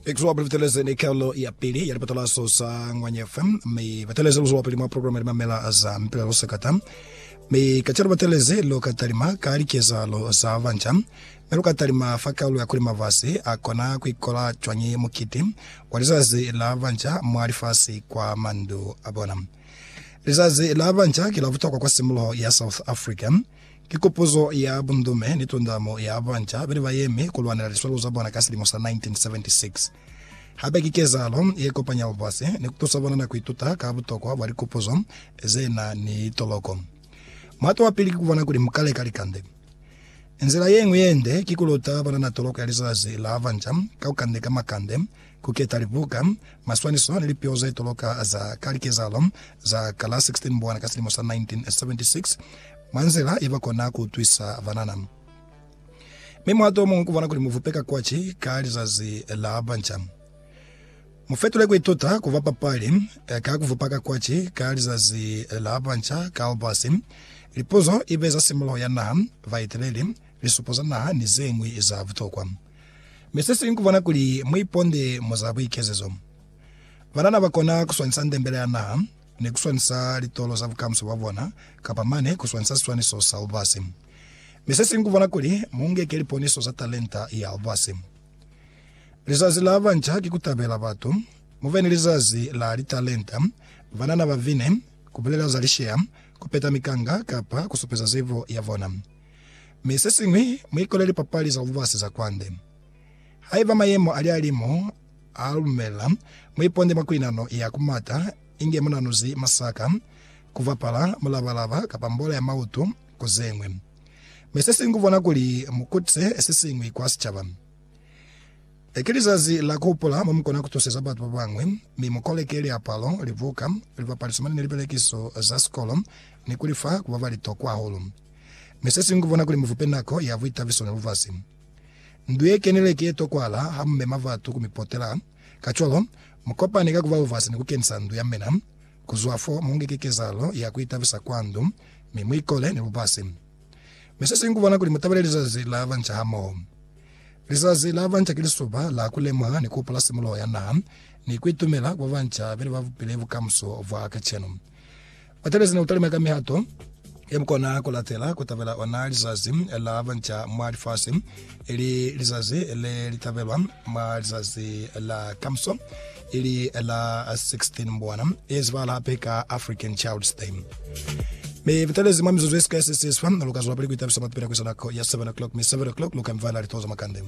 Exwa bateleze ni kalo ya pili ya lipatalaso sa Ngwanya FM mi bateleze luzo wapili mwa programa ya mamela za mpila lo sekata mi kacelo bateleze lo katalima ka likezalo za vanja mi lo katalima fa kalo ya kuli mavasi a kona kuikola cwañi mukiti wa lizazi la vanja mwa lifasi kwa mandu a bona. Lizazi la vanja ki la butokwa kwa simuloho ya South Africa Ki kopozo ya bundume ni tundamo ya banca bene ba yemi ku lwanela liswalo za bona ka silimo sa 1976. Hape ki kezahalo ye kopanya lubasi ni ku tusa bona na ku ituta ka butokwa bwa likopozo ze na ni toloko. Muhato wa pili ki ku bona kuli mu ka leka likande. Nzila ye ñwi ye nde ki ku luta banana toloko ya Lizazi la Banca ka ku kandeka makande Ku keta libuka, maswaniso ni lipeo za itoloka za ka likezahalo za ka la 16 Mbwana ka silimo sa 1976 mwa nzila ye ba kona ku utwisa banana. Mi muhato o muñwi ku bona kuli mu vupe ka kwaci ka Lizazi la Banca. Mu fetule ku ituta ku ba papali ka ku vupa ka kwaci ka Lizazi la Banca ka albasi, lipuzo i be za simuluho ya naha, baeteleli, lisupo za naha ni ze ñwi za butokwa. Mi sesiñwi kukubona kuli muiponde mwa za buikezezo. Banana bakona kuswanisa ndembele ya naha, ni kuswanisa litolo za bukamuso bwa bona, kapa mane kuswanisa siswaniso sa lubasi. Mi sesiñwi kukubona kuli muunge keliponiso za talenta ya lubasi. Lizazi la Banca ki Kutabela Batu, Mube ni Lizazi la Litalenta, Banana babine, Kubulela za lisheya, Kupeta mikanga, kapa kusupeza zibo yabona. mi sesiñwi muikolele lipapali za lubasi za kwande. Haiba mayemo ali alimo a lumela, muiponde mwa kuinano ya kumata, inge munanuzi, masaka, kubapala, mulabalaba, kapa mbola ya mautu, ku zeñwi. Mi sesiñwi kubona kuli mukutise sesiñwi kwa sicaba. Le ki lizazi la kuhupula momukona kutuseza batu babañwi, mi mukoleke liapalo, libuka, lipapaliso mane ni lipelekiso za sikolo ni kulifa ku babalitokwa hahulu. Mi se siñwi kubona kuli muvupe nako ya buitabiso ni lubasi. Ndu ye kenile ki ye tokwala ha mu mema batu ku mi potela, kacwalo, mu kopane ka kuba lubasi ni ku kenisa ndu ya mina. Ku zwa fo, mu ngeke kezahalo ya ku itabisa kwa ndu, mi mu ikole ni lubasi. Mi se siñwi kubona kuli mu tabele Lizazi la Banca hamoho. Lizazi la Banca ki lisuba la ku lemuha ni ku hopola simuloho ya naha ni ku itumela kwa banca beli ba bupile bukamuso bwa kacenu. Batabezi ne utalima ka mihato ye mukona kulatela kutabela ona lizazi la banca mwa lifasi, ili lizazi le litabelwa mwa lizazi la kamuso, ili la 16 Mbwana, ye zibahala hape ka African Child's Day. Mi butelezi mwa mizuzu yesika yesisiswa, lukazwelapili kuitabisa mwa kupila kuisa nako ya 7 o'clock, mi 7 o'clock luka mivala litoza makande.